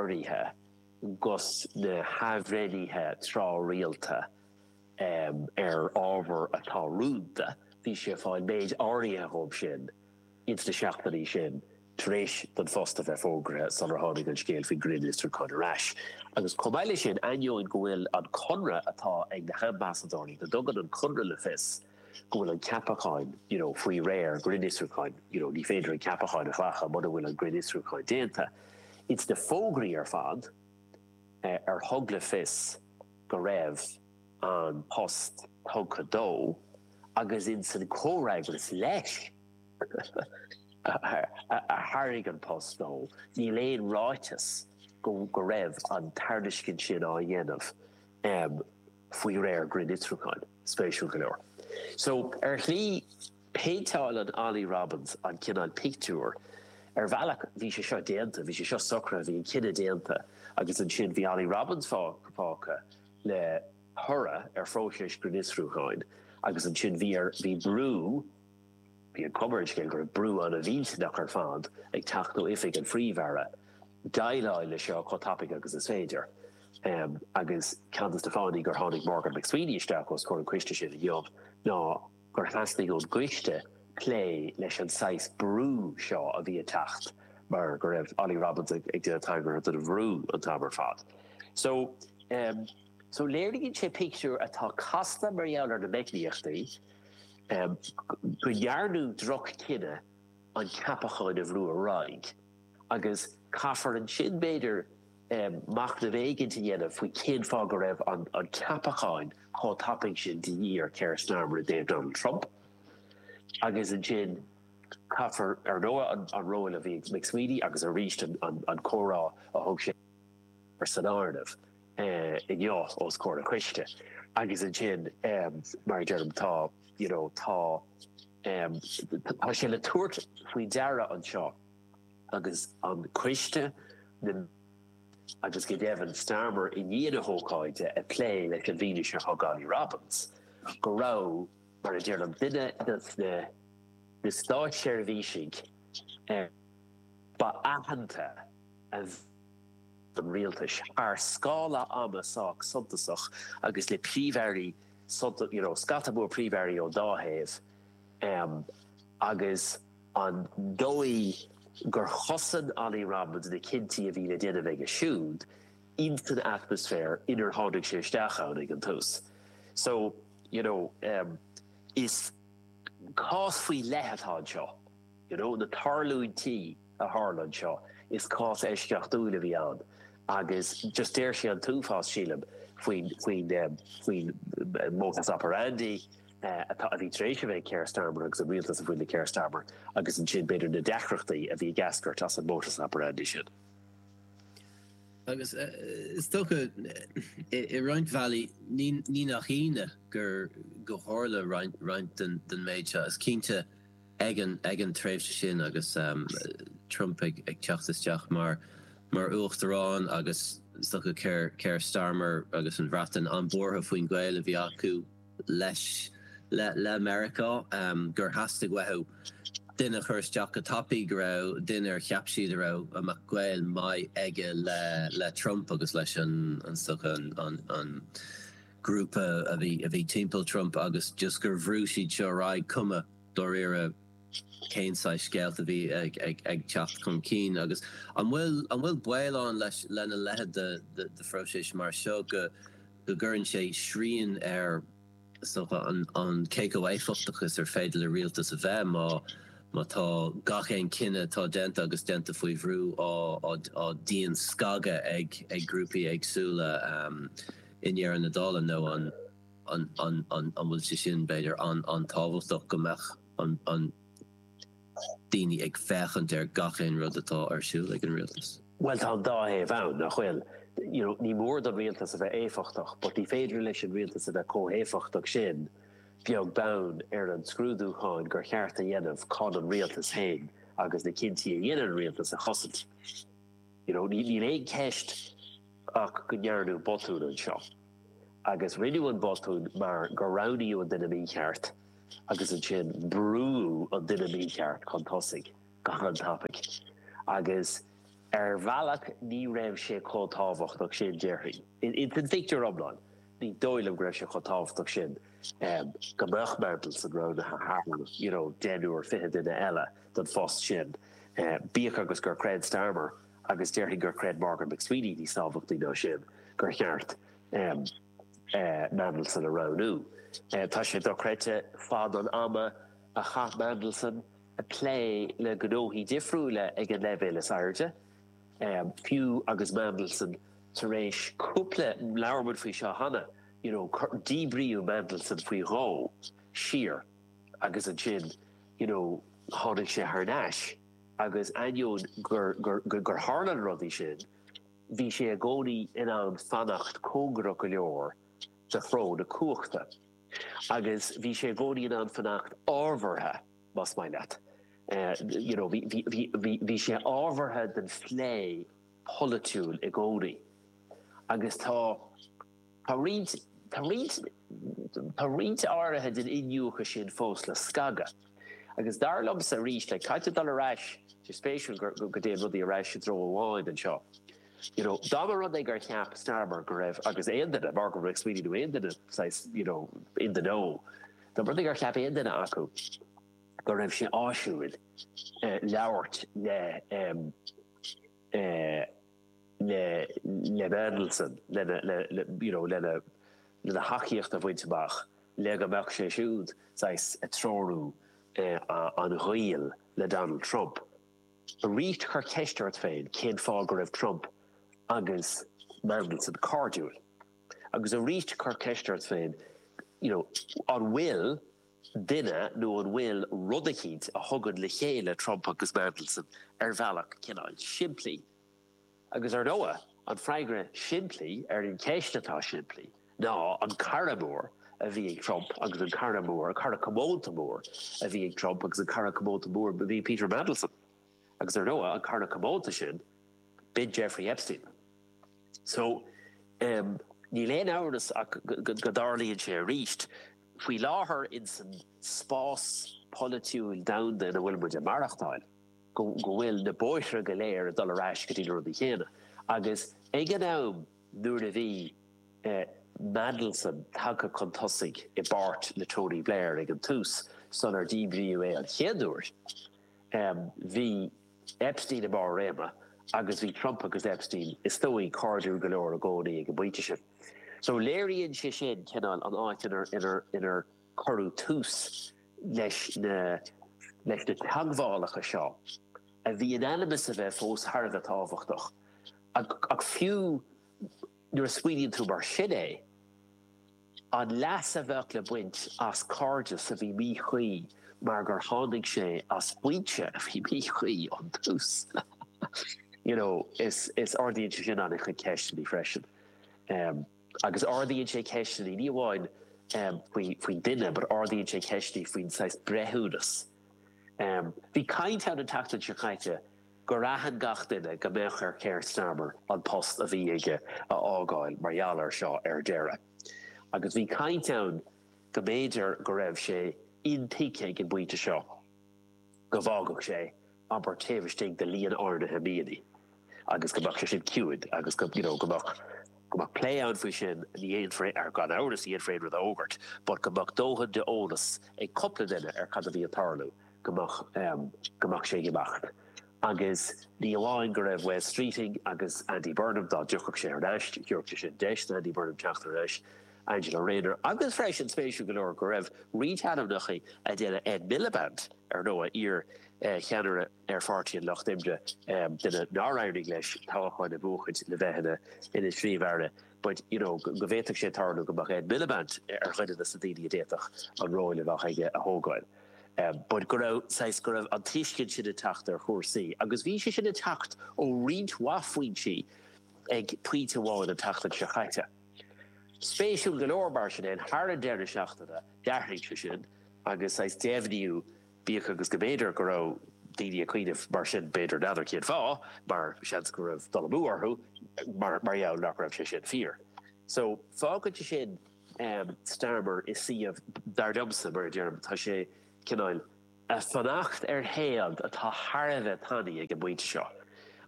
urraithe agus na hathbhreithnithe tráthrialta ar ábhar atá rúnda, bhí sé ag fáil méid áirithe díobh sin ins na seachtainí sin tar éis don phost a bheith fógraithe sular tháinig an scéal faoin ngrinnfhiosrúchán ar ais. Agus chomh maith le sin, ainneoin go bhfuil an conradh atá ag na hambasadóirí, go dtugann an conradh le fios, go bhfuil an ceapachán you know faoi réir grinnfhiosrúcháin, you know ní féidir an ceapachán a ghlacadh mura bhfuil an grinnfhiosrúchán déanta. Ins na fógraí ar fad eh ar thug le fios go raibh an post tugtha dó agus ins an comhfhreagras leis a thairg an post dó, níl aon ráiteas go go raibh an tairiscint sin á déanamh. em. faoi réir grinnfhiosrúcháin. Spéisiúil go leor so, ar shlí, péinteálann Olly Robbins an cineál pictiúir, ar bhealach, bhí sé seo déanta, bhí sé seo socraithe, bhí an cinneadh déanta agus ansin bhí Olly Robbins fágtha le toradh ar phróiseas grinnfhiosrúcháin agus ansin bhí brú, Bhí an chuma ar an scéal go raibh brú an-mhillteach ar fad ag teacht ó Oifig an Phríomh-Aire déileáil leis seo chomh tapaidh agus is féidir. Agus ceann des na fáthanna gur tháinig Morgan McSweeney isteach os comhair an choiste sin inniu ná gur theastaigh ón gcoiste plé leis an saghas brú seo a bhí ag teacht mar go raibh Olly Robbins ag déanamh tagartha don bhrú an t-am ar fad. So léiríonn sé pictiúr atá casta mar gheall ar na meicníochtaí, go ndearnadh droch-chinneadh an ceapacháin a bhrú ar aghaidh, agus caithfear ansin, b'fhéidir, machnamh éigint a dhéanamh faoi cén fáth go raibh an ceapachán chomh tapaidh sin de dhíth ar Keir Starmer i dtaobh Donald Trump, agus ansin caithfear, ar ndóigh, an ról a bhí ag McSweeney agus arís an comhrá a thug sé ur san áireamh. inniu os comhair an choiste agus ansin mar a deirim tá you know tá tá sé le tabhairt faoi deara anseo agus an coiste na agus go deimhin Starmer i ndiaidh na hócáide ag plé leis an bhfianaise a thug Olly Robbins go raibh mar a deirim duine dos na na státseirbhísigh ba aitheanta a an rialtais, ar scála ama sách suntasach agus le príomh-airí suntasacha, you know scata mór príomh-airí ón dá thaobh, agus an dóigh gur chosain Olly Robbins na cinntí a bhí le déanamh aige siúd insan atmaisféar inar tháinig sé isteach ann ag an tús. So, you know, is cás faoi leith atá anseo, you know, na tarlúintí, a tharla anseo. Is cás eisceachtúil a bhí ann agus just deir sé an t-uafás, sílim, faoin modus operandi atá, a bhí tar éis a bheith ag Keir Starmer agus an rialtas a bhí faoi Keir Starmer agus ansin, b'fhéidir, na deacrachtaí a bhí ag eascairt as an modus operandi sin. Agus is dócha, i roinnt bhealaí, ní nach ionadh gur tharla roinnt den méid seo. Is cinnte, ag an tréimhse sin agus Trump ag teacht isteach mar uachtarán agus is dócha Keir Starmer agus an Bhreatain an-buartha faoin ghaol a bhí acu le Meiriceá gur theastaigh uathu duine a chur isteach go tapaidh go raibh duine ar cheap siad a raibh a mbeadh gaol maith aige le Trump agus leis an, is dócha, an grúpa a bhí timpeall Trump agus just gur bhrú siad seo ar aghaidh cuma dáiríre cén saghas scéalta a bhí ag teacht chun cinn agus an bhfuil baol ann lena leithéid de phróiseas mar seo go gcuireann sé srian ar an cé chomh éifeachtach is gur féidir le rialtas a bheith má tá gach aon chinneadh atá déanta agus déanta faoi bhrú á dianscagadh ag grúpaí éagsúla i ndeireadh na dála nó an. an bhfuil sé sin, b'fhéidir, an-tábhachtach, go mbeadh daoine ag féachaint ar gach aon rud atá ar siúl ag an rialtas? Bhuel, tá an dá thaobh ann, nach bhfuil? You know, ní mór don rialtas a bheith éifeachtach, but ní féidir leis an rialtas a bheith chomh héifeachtach sin, beag beann ar an scrúdúcháin gur cheart a dhéanamh chun an rialtas féin agus na cinntí a dhéanann an rialtas a chosaint. You know, níl aon cheist ach go ndearnadh botún anseo. agus rinneadh an botún mar gur roghnaíodh an duine mícheart agus ansin brúadh an duine mícheart chun tosaigh go han-tapaidh agus ar bhealach ní raibh sé chomh tábhachtach sin, déarfainn. Ins an phictiúr iomlán ní dóigh liom go raibh sé chomh tábhachtach sin go mbeadh Mandelson roghnaithe thar, you know, deichniúr, fiche duine eile don phost sin, bíodh agus gur chreid Starmer, agus déarfainn gur chreid Morgan McSweeney níos tábhachtaí ná sin gur cheart Mandelson a roghnú. Tá sé dochreidte fad an ama a chaith Mandelson ag plé le gnóthaí difriúla ag an leibhéal is airde, fiú agus Mandelson tar éis cúpla, labhair muid faoi seo cheana, you know, díbríodh Mandelson faoi dhó siar agus ansin, you know, tháinig sé thar n-ais. agus ainneoin gur tharla na rudaí sin, bhí sé i gcónaí in ann fanacht cóngarach go leor do threo na cumhachta, agus bhí sé i gcónaí in ann fanacht ábhartha, más maith leat, you know, bhí sé ábhartha don phlé pholaitiúil i gcónaí, agus tá. Tá roinnt áirithe den iniúchadh sin fós le scagadh, agus dar liomsa arís, caithfear dul ar ais, is spéisiúil go dtéann rudaí ar ais i dtreo amháin anseo. you know, dá mba rud é gur cheap Starmer go raibh, agus aon duine, Morgan McSweeney nó aon duine saghas, you know, in the know, dá mba rud é gur cheap aon duine acu go raibh sé áisiúil labhairt le, le Mandelson, you know, lena thacaíocht a bhaint amach, le go mbeadh sé siúd saghas ag treorú an ghaoil le Donald Trump. Arís, cuir ceist ort féin cén fáth go raibh Trump agus Mandelson cairdiúil. Agus arís, cuir ceist ort féin, you know, an bhfuil. duine nó an bhfuil rud eicínt a thugann le chéile Trump agus Mandelson ar bhealach cineál simplí? Agus ar ndóigh, an freagra simplí ar an cheist atá simplí ná an cara mór a bhí ag Trump agus an cara mór, cara comónta mór a bhí ag Trump agus an cara comónta mór a bhí Peter Mandelson. Agus ar ndóigh, an cara comónta sin, b'in Jeffrey Epstein. So, níl aon amhras ach go dtarlaíonn sé arís. Faoi láthair, insan spás polaitiúil domhanda ina bhfuil muid ag maireachtáil, go bhfuil na bóithre go léir ag dul ar ais go dtí na rudaí céanna. Agus ag an am nuair a bhí Mandelson tagtha chun tosaigh i bpáirt le Tony Blair ag an tús, sular díbríodh é an chéad uair, bhí, Epstein i mbarr réime agus bhí Trump agus Epstein, is dóigh, cairdiúil go leor i gcónaí ag an bpointe sin. So léiríonn sé sin cineál an áit inar cuireadh tús leis na teagmhálacha seo a bhí in ainm is a bheith fós thar a bheith tábhachtach. Ach fiú nuair a smaoiníonn tú mar sin é, An leas a bheadh le baint as cairdeas a bhí míchuí mar gur tháinig sé as foinse a bhí míchuí ón tús. You know, is ardaíonn sé sin an-chuid ceisteanna freisin. Agus ardaíonn sé ceisteanna ní amháin faoin duine but ardaíonn sé ceisteanna faoin saghas breithiúnas. Bhí caint ann an tseachtain seo caite, gur aithin gach duine go mbeadh ar Keir Starmer an post a bhí aige a fhágáil mar gheall air seo ar deireadh agus bhí caint ann go mb'fhéidir go raibh sé intuigthe ag an bpointe seo go bhfágfadh sé abair taobh istigh de líon áirnithe míonnaí agus go mbeadh sé sin ciúin agus go you know go mbeadh go mbeadh plé ann faoi sin ní dhéanfar gan amhras ní dhéanfar aon rud a fhógairt but go mbeadh dóthain d'eolas ag cúpla duine ar cad a bhí ag tarlú. go mbeadh sé ag imeacht. Agus ní amháin go raibh Wes Streeting agus Andy Burnham, dá dtiocfadh sé thar n-ais, thabharfadh sé sin deis d'Andy Burnham teacht thar n-ais leis, Angela Rayner, agus freisin, spéisiúil go leor, go raibh roinnt ainmneachaí eile, Ed Miliband, ar ndóigh, iar-cheannaire ar Pháirtí an Lucht Oibre, duine nár éirigh leis toghcháin a bhuachaint, le bheith ina Phríomh-Aire. but, you know, go bhféadfadh sé tarlú go mbeadh Ed Miliband ar dhuine de na daoine a d'fhéadfadh an ról a bheadh aige a thógáil. But go raibh, saghas, go raibh an tuiscint sin ag teacht ar chúrsaí agus bhí sé sin ag teacht ó roinnt mhaith foinsí ag pointe amháin an tseachtain seo chaite. Spéisiúil go leor, mar sin fhéin, thar an deireadh seachtaine, d'athraigh sé sin agus, saghas, deimhniú, Bíodh agus go mb'fhéidir go raibh daoine ag cuimhneamh mar sin, b'fhéidir, n'fheadar cén fáth, mar seans go raibh dul amú orthu mar gheall nach raibh sé sin fíor. So, fágann sé sin Starmer i suíomh, dar liomsa, mar a deirim, tá sé cineál a' fanacht ar théad atá thar a bheith tanaí ag an bpointe seo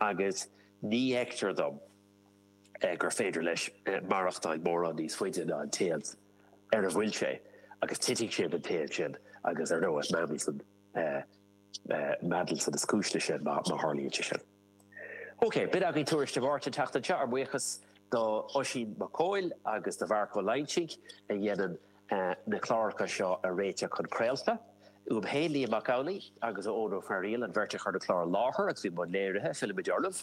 agus ní fheictear dom, gur féidir leis maireachtáil mórán níos faide ná an téad ar a bhfuil sé agus titfidh sé den téad sin agus ar ndóigh Mandelson, Mandelson is cúis leis sin má tharlaíonn sé sin. Ok, b'in againn Tuairisc Dé Máirt an tseachtain seo, ár mbuíochas d'Oisín Mac Cóil agus do Mharc Ó Loingsigh a dhéanann na cláracha seo a réiteach chun craolta. Uaim féin Liam Mac Amhlaigh agus Eoin Ó Fearghaíl an bheirt a chuir an clár i láthair agus a bhí i mbun léirithe, fillimid oraibh.